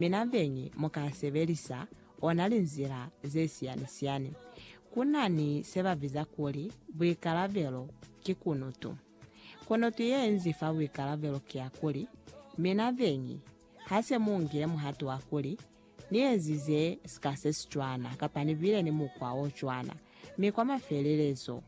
Mi na beñi mu ka sebelisa ona linzila ze siyani-siyani. Ku na ni se ba biza kuli buikalabelo ki kunutu. Kunutu ye nzi fa buikalabelo ki ya kuli, Mi na beñi, ha se mu ngile muhato wa kuli, Ni ezize sika se si cwana, kapa ni bile ni mukwa o cwana, mi kwa mafelelezo,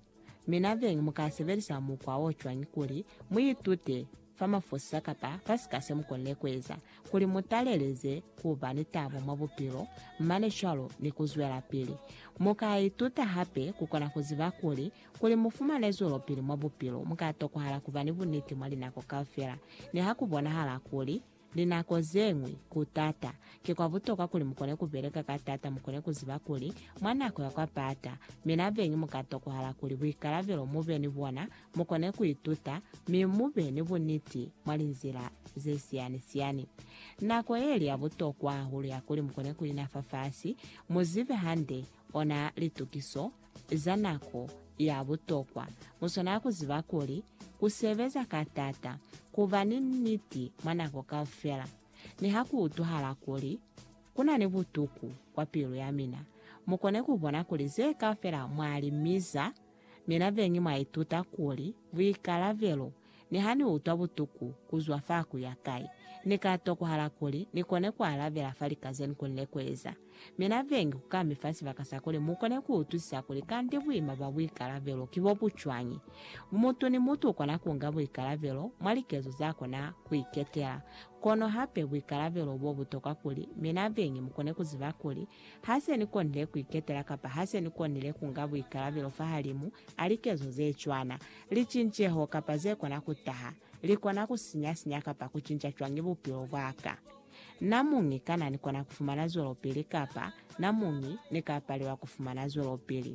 Mi na beñi mu ka sebelisa mukwa wo cwañi kuli mu itute fa mafosisa kapa fa sika se mu konile ku eza kuli mu taleleze ku ba ni tabo mwa bupilo, mane cwalo ni ku zwelapili? Mu ka ituta hape ku kona ku ziba kuli, kuli mu fumane zwelopili mwa bupilo, mu ka tokohala ku ba ni buniti mwa linako kaufela, niha ku bonahala kuli Linako ze ñwi, ku t'ata. Ki kwa butokwa kuli mu kone ku beleka ka t'ata, mu kone ku ziba kuli, mwa nako ya kwa pata, mi na beñi mu ka tokohala kuli buikalabelo mu be ni bona, mu kone ku ituta, mi mu be ni buniti mwa linzila ze siyani-siyani. Nako ye li ya butokwa hahulu ya kuli mu kone ku ina fafasi, mu zibe hande ona litukiso, za nako ya butokwa mu swanela ku ziba kuli ku sebeza ka t'ata ku ba ni niti mwa nako kaufela. Niha ku utwahala kuli ku na ni butuku kwa pilu ya mina, mu kone ku bona kuli ze kaufela mwa li miza. Mina beñi mwa ituta kuli buikalabelo Niha ni utwa butuku kuzwa fa kuya kai, ni ka tokohala kuli ni kone ku alabela fa lika ze ni konile ku eza. Mi na bengi ku ka mi fa sibaka sa kuli mu kone ku utwisisa kuli kanti buima bwa buikalabelo ki bo bu cwañi. Mutu ni mutu u kona ku nga buikalabelo mwa likezo za kona ku iketela. Kono hape buikalabelo bo bu tokwa kuli mi na bengi mu kone ku ziba kuli Ha se ni konile ku iketela kapa ha se ni konile ku nga buikalabelo fahalimu a likezo ze cwana, licinceho kapa ze kona ku taha, li kona ku sinya-sinya kapa ku cinca cwañi bupilo bwa ka? Namuñi, kana ni kona ku fumana zwelopili kapa namuñi ni ka palelwa ku fumana zwelopili?